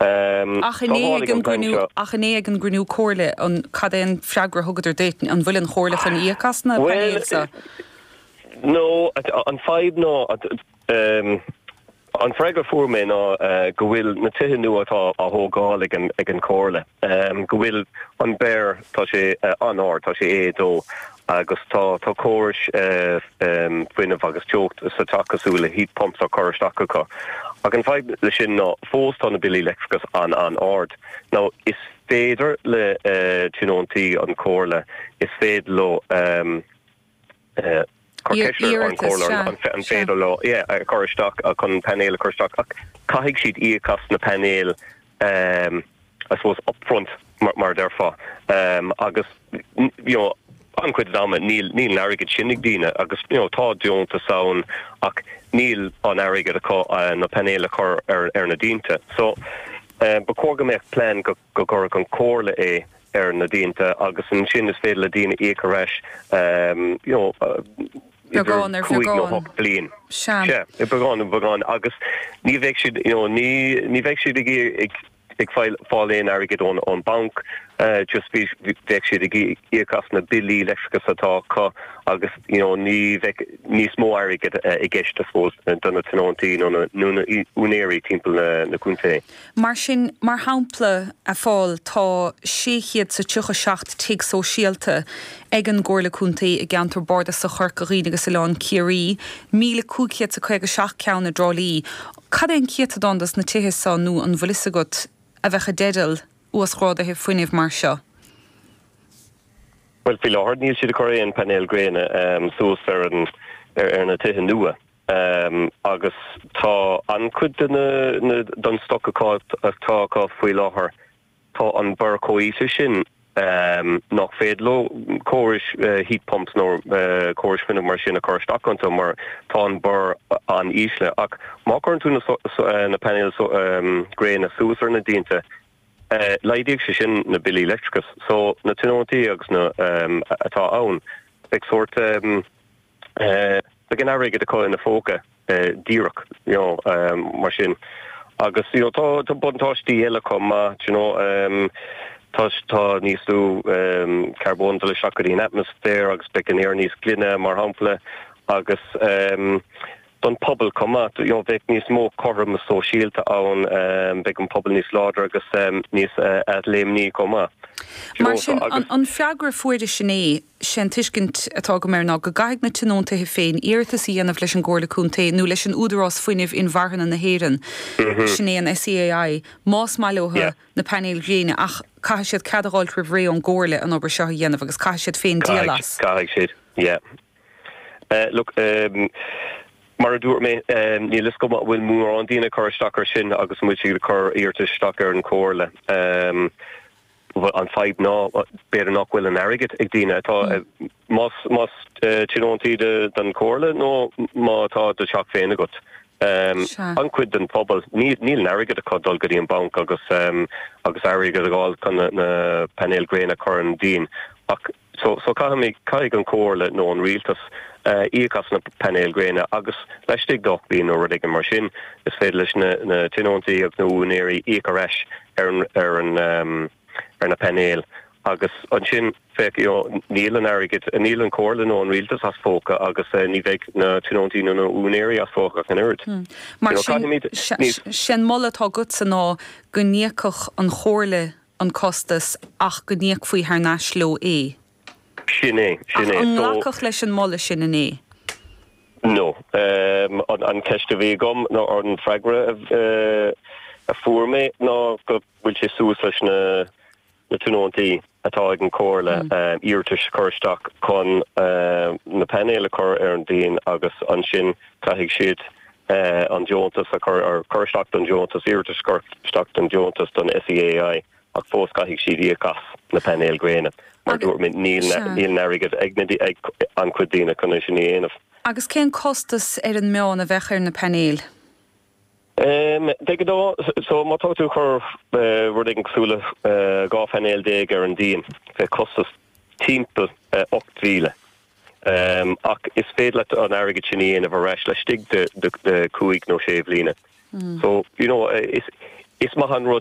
Ach inné, ach inné ag an gcruinniú comhairle, an, cad é an freagra a thugadar duit? An bhfuil an chomhairle chun íoc as na painéil seo? Bhuel, no, an fadhb ná, an freagra a fuair mé ná go bhfuil na tithe nua atá á thógáil ag an, ag an chomhairle, go bhfuil an BER, tá sé an-ard, tá sé A2, Agus tá córais fuinnimh agus teocht sa teach cosúil le heat pumps á gcur isteach acu. Ach an fadhb leis sin ná fós tá na billí leictreachais an-an-ard. Nó is féidir le tionóntaí an chomhairle, is féidir leo cur ceist ar an comhairle an féidir leo é a chur isteach, chun painéil a chur isteach, ach caithfidh siad íoc as na painéil. I suppose, upfront mar a déarfá. Agus, you know, an-chuid den am níl an airgead sin ag daoine agus, you know, tá deontas ann ach níl an airgead acu na painéil a chur ar na díonta. So, ba chóir go mbeadh plean go gcuirfeadh an Chomhairle é ar na díonta agus ansin is féidir le daoine íoc ar ais, you know, cúig nó hocht bliain. Sea. Sea. Beagán ar bheagán. Agus ní bheidh siad, you know, ní bheidh siad ag iarraidh, ag fáil aon airgid ón bhanc, just bhí, bheadh siad ag íoc as na billí leictreachais atá acu agus you know ní bheadh níos mó airgid i gceist I suppose do na tionóntaí nó na úinéirí timpeall na contae. Mar sin, mar shampla, a Phóil, tá sé chéad is tríocha seacht tigh sóisialta ag an gComhairle Contae i gceantar bardasach Chorca Dhuibhne agus Oileán Ciarraí, míle cúig chéad is caoga seacht ceann i dTrá Lí, Cad é an céatadán de na tithe seo, nó an bhfuil fhios agat, a bheadh i dteideal uasghráduithe fuinnimh mar seo? Bhuel, faoi láthair níl siad ag cur aon phainéal gréine suas ar na tithe nua agus tá an-chuid den stoc atá acu faoi láthair Tá an BER chomh híseal sin nach féidir leo córais heat pumps nó córais fuinnimh mar sin a chur isteach iontu mar tá an BER an-ísle. Ach má chuireann tú na painéil ghréine suas ar na díonta, laghdódh sé sin na billí leictreachais so na tionóntaí agus na atá ann, beidh sórt. Beidh an airgead acu ina phóca díreach mar sin. Agus tá buntáistí eile chomh maith. Tá níos lú carbóin ag dul isteach go dtí an atmaisféar agus beidh an aer níos glaine, mar shampla, agus. don phobal chomh maith. Bheadh níos mó cothroime sóisialta ann, bheadh an pobal níos láidre agus níos athléimní chomh maith. Mar sin, an freagra a fuaireas inné, sé an tuiscint atá agam air ná go gcaithfidh na tionóntaithe féin iarratas a dhéanamh leis an gComhairle Contae nó leis an Údarás Fuinnimh Inmharthana na hÉireann, sin é an SEAI, más maith leothu na painéil ghréine ach caithfidh siad cead a dh'fháilt roimh ré ón gComhairle an obair seo a dhéanamh agus caithfidh siad féin díol as. Caithfidh siad, yeah. Look, mar a dúirt mé, níl fhios agam an bhfuil mórán daoine ag cur isteach air sin agus an bhfuil siad ag cur iarratais isteach ar an chomhairle. Bhuel, an fadhb ná, b'fhéidir nach bhfuil an airgead ag daoine atá, más, más tionóntaí don chomhairle nó má tá do theach féin agat, an-chuid den phobal, níl, níl an airgead acu dul go dtí an banc agus, agus airgead a dh'fháil chun na painéil gréine a chur ar an díon. Ach. so, so caithfimid, caithfidh an Chomhairle nó an Rialtas íoc as na painéil ghréine agus laistigh d'ocht mbliain nó rud éigin mar sin, is féidir leis na, na tionóntaí agus na úinéirí íoc ar ais ar an, ar na painéil agus ansin, féach, you know, níl an airgead, níl an Chomhairle nó an Rialtas as phóca agus eh, ní bheidh na tionóntaí nó na úinéirí as phóca ach an oiread. Hmm. Mar sin, sin moladh atá agatsa ná go n-íocfadh an Chomhairle an costas ach go n-íocfaí thar n-ais leo é. Sin é, sin é. So. Ach níor glacadh leis an moladh sin, an é? No. An ceist a bhí agam, nó an freagra a fuair mé ná go bhfuil sé suas leis na na tionóntaí atá ag an comhairle iarratas a chur isteach chun na painéil a chur ar an díon agus ansin caithfidh siad an deontas a chur cur isteach don deontas, iarratas a chur isteach don deontas don SEAI ach fós caithfidh siad íoc as na painéil ghréine. Mar a dúirt mé, níl an airgead ag an-chuid daoine chun é sin a dhéanamh. Agus cén costas ar an meán a bheadh ar na painéil de ghnáth? So, má tá tú ag cur rud éigin cosúil le 12 phainéal ar an díon, bheadh costas timpeall 8,000. ach is féidir leat an airgead sin a dhéanamh ar ais laistigh de chúig nó sé bhliana so. Yeah. Is maith an rud